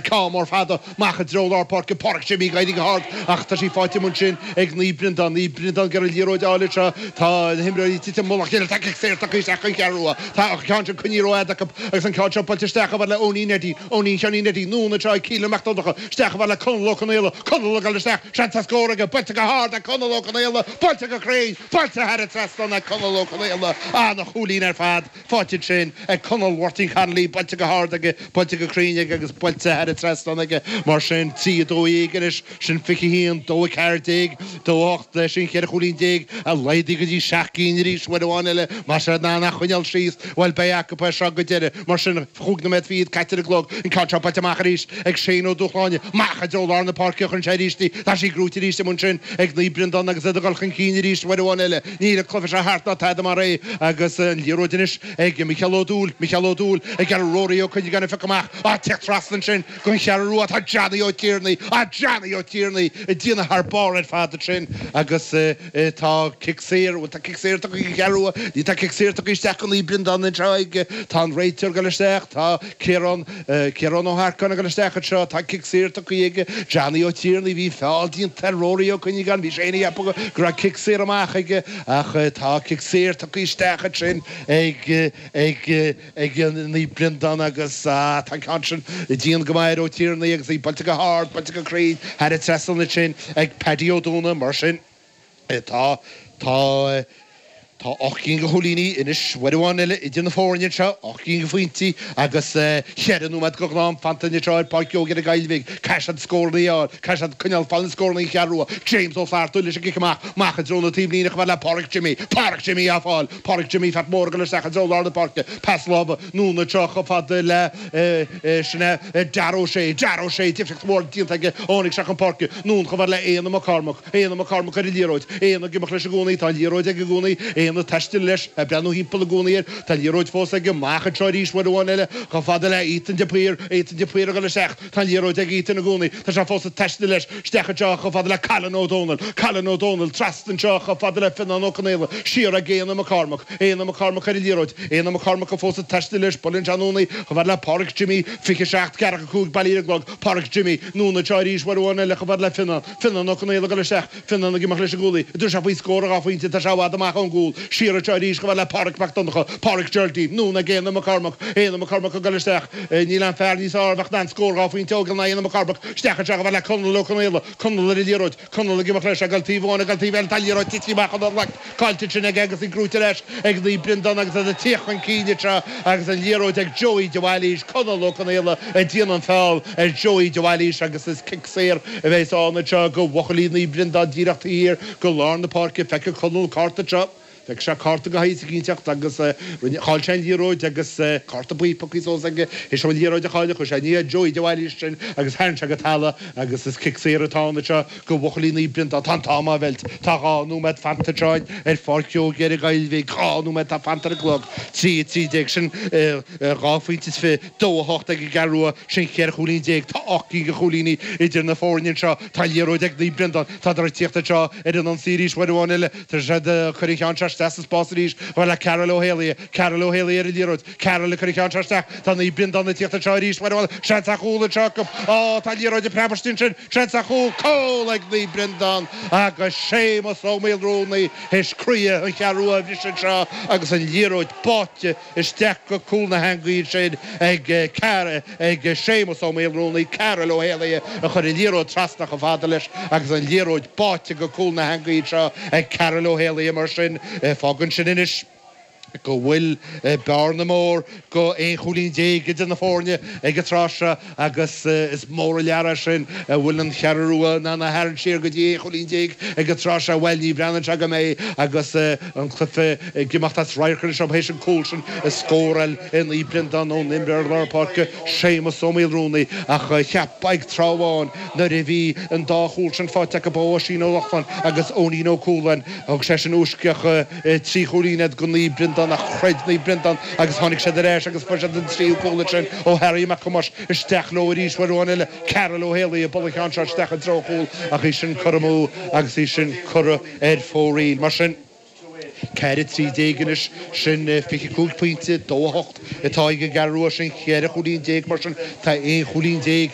Ceann mór fada amach i dtreo lár páirce Páraic Jimmy ag éirí go hard ach tá sí faighte amuigh ansin ag Naomh Breandán. Naomh Breandán ag iarraidh liathróid a fháil anseo. Tá na himreoirí tite i mullach a chéile. Tá cic saor tugtha isteach gon Cheathrú Rua. Tá an ceann sin coinníodh rómhaith acu agus an ceann seo buailte isteach chomh fada le Eoinín Eddie. Eoinín Sheáinín Eddie anonn anseo ag Keelan Mac Donnacha. Isteach chomh fada le Conall Ó Conaola. Conall ag dul isteach. Seans ar scór aige. Buailte go hard ag Conall Ó Conaola. Buailte go cruinn. Buailte thar an trasnán ag Conall Ó Conaola. An-chúilín ar fad. Faighte ansin ag Conall Mháirtín Connolly, buailte go hard aige, buailte go cruinn aige agus buailte thar an trasnán aige mar sin. Trí a dó dhéag anois, sin fiche a haon, dó a ceathair déag, dó a hocht, sin cheithre chúilín déag, laghdaithe go dtí seacht gcinn arís, uair amháin eile, más ea, ná nach choinneáil síos, bhuel, beidh acu é seo go deireadh, mar sin. Chúig nóiméad fichead caite ar an gclog, an ceann seo buailte amach arís ag Shane Ó Dúshláine, amach i dtreo lár na páirce a chuireann sé arís í, tá sí gnóite arís amuigh ansin ag Naomh Breandán agus iad ag dul chun cinn arís uair amháin eile, Níl an cluiche seo thart ná tada mar é agus an liathróid anois ag Micheál Ó Dúill, Micheál Ó Dúill ag iarraidh Rory Ó Cuinneagáin a phiocadh amach, ag teacht trasna ansin gon Cheathrú Rua atá Johnny Ó Tiarnaigh, á Johnny Ó Tiarnaigh ag déanamh thar barr ar fad ansin agus tá cic saor, bhuel tá cic saor tugtha gon Cheathrú Rua, níl, tá cic saor tugtha isteach go Naomh Breandán anseo ag, tá an réiteoir ag dul isteach, tá. Ciarán, Ciarán Ó hEarcáin ag dul isteach anseo, tá cic saor tugthaí aige, Johnny Ó Tiarnaigh, bhí feall déanta ar Rory Ó Cuinneagáin, bhí sé féin ag ceapadh go raibh cic saor amach aige ach tá cic saor tugthaí isteach ansin ag, ag, ag Naomh Breandán agus tá an ceann sin dian go maith ar Ó Tiarnaigh agus í buailte go hard, buailte go cruinn thar an trasnán ansin ag Paddy Ó Dúnaidh, mar sin. Tá, tá, tá ocht gcinn de chúilíní anois, uair amháin eile idir na foirne anseo, ocht gcinn de phointí agus cheithre nóiméad de ghnáth-am fanta anseo ar Páirc Joe Ghearr Gaillmhigh, caithfidh siad scóranna a fháil, caithfidh siad coinneáil ag fáil na scóranna, an Cheathrú Rua, James Ó Flatharta leis an gcic amach, amach i dtreo na taobhlíne chomh fada le Páraic Jimí, Páraic Jimí á fáil, Páraic Jimí Pheait Mhóir ag dul isteach i dtreo lár na páirce, pas láimhe, anonn anseo chomh fada le, sin é, Dara Ó Sé, Dara Ó Sé, difríocht mhór déanta aige ó tháinig sé isteach chun páirce, anonn chomh fada le Éanna Mac Cormaic. Éanna Mac Cormaic ar an liathróid, Éanna ag imeacht leis i gcónaí, tá an liathróid aige i gcónaí, Éanna ag taisteal leis, ag breathnú thimpeall i gcónaí air, tá an liathróid fós aige, amach anseo arís uair amháin eile, chomh fada le Ethan de Paor, Ethan de Paor ag dul isteach, tá an liathróid ag Ethan i gcónaí, tá sé fós ag taisteal leis, isteach anseo chomh fada le Cailean Ó Dónaill, Cailean Ó Dónaill, trasna anseo chomh fada le Fionán Ó Conaola, siar ag Éanna Mac Cormaic, Éanna Mac Cormaic ar an liathróid, Éanna Mac Cormaic atá fós ag taisteal leis, buaileann sé anonn í, chomh fada le Páraic Jimmy, fiche seacht, ceathracha cúig, bailithe ar an gclog, Páraic Jimmy, anonn anseo arís uair amháin eile chomh fada le Fionán, Fionán Ó Conaola ag dul isteach, Fionán ag imeacht leis i gcónaí, an dtabharfaidh sé faoi scór dhá phointe, tá sé i bhfad amach ón gcúl, siar anseo arís chomh fada le Pádraig Mac Donncha, Pádraig Geraldine, anonn ag Éanna McCormack, Éanna McCormack ag dul isteach, níl aon fear níos fearr a bheadh in ann scór dhá phointe a fháil ná Éanna McCormack, isteach anseo chomh fada le Conall Ó Conaola, Conall ar an liathróid, Conall ag imeacht leis, ag dul taobh amháin, ag dul taobh eile, tá an liathróid tití amach as a ghlac, caillte ansin aige agus í gnóite ar ais ag Naomh Breandán agus iad ag tíocht chun cinn anseo agus an liathróid ag Joey de Bhailís, Conall Ó Conaola ag déanamh an feall ar Joey de Bhailís agus is cic saor a bheas ann anseo do bhuachaillí Naomh Breandán díreach taobh thiar de lár na páirce. Feicfidh Conall an cárta anseo. Feicfidh sé cárta go haighidh sa gcinnteacht agus rinne, chaill sé an liathróid agus cárta buí piocthaí suas aige. théis an liathróid a chailleadh, chuaigh sé i ndiaidh Joey de Bhailís ansin agus tharraing sé go talamh é agus is cic saor atá ann anseo do bhuachaillí Naomh Breandán, Tá an t-am á mheilt, tá dhá nóiméad fanta ansin ar Pháirc Joe Ghéire Gaillmhigh, dhá nóiméad atá fanta ar an gclog, trí, trí déag sin, dhá phointe is fiche. Dó a hocht ag an gCeathrú Rua sin cheithre chúilín déag. Tá ocht gcinn de chúilíní idir na foirne anseo. Tá an liathróid ag Naomh Breandán. Tá siad ag tíocht anseo ar an ionsaí arís uair amháin eile. Tá siad ag cur an cheann seo isteach sa spás arís. chomh fada le Karol Ó hÉalaithe. Karol Ó hÉalaithe ar an liathróid. Karol ag cur an cheann seo isteach. Tá Naomh Breandán ag tíocht anseo arís uair amháin. Seans ar chúl anseo acu. Á, tá an liathróid ag preabadh istigh ansin. Seans ar chúl. Cúl ag Naomh Breandán agus Séamus Ó Maolrúnaí théis croí an Cheathrú Rua a bhriseadh anseo agus an liathróid báite isteach go cúl na heangaí ansin ag Séamus Ó Maolrúnaí, Cairill Ó hÉalaithe a chuir an liathróid trasna chomh fada leis agus an liathróid báite go cúl na heangaí anseo ag Cairill Ó hÉalaithe mar sin. Fágann sin anois go bhfuil bearna mór de aon chúilín déag idir na foirne ag an tráth seo. agus is mór an lear é sin an bhfuil an Cheathrú Rua in ann a tharraingt siar go dtí aon chúilín déag ag an tráth seo, bhail, ní bhreathnaíonn sé go mbeidh agus an cluife ag imeacht as radharc anois orthu théis an cúl sin a scóráil Naomh Breandán ón imreoir lár páirce Séamus Ó Maolrúnaí, ach cheapfá ag tráth amháin nuair a bhí an dá chúl sin faighte acu ó Oisín Ó Lochlainn agus Eoinín Ó Cualáin, thug sé sin i bhfoisceacht. Trí chúilín iad do Naomh Breandán ach chreid Naomh Breandán agus tháinig siad ar ais agus fuair siad an tríú cúl ansin ó Harry Mac Thomáis. Isteach leo arís, uair amháin eile, Carroll Ó hÉalaí, ag bualadh an cheann seo isteach i dtreo an chúil ach í sin curtha amú agus í sin curtha ar fóraoil. Mar sin, ceathair 13 anois, sin 25 pointe, dó a hocht, atá ag an gCeathrú Rua. Sin cheithre chúilín déag, mar sin tá aon chúilín déag.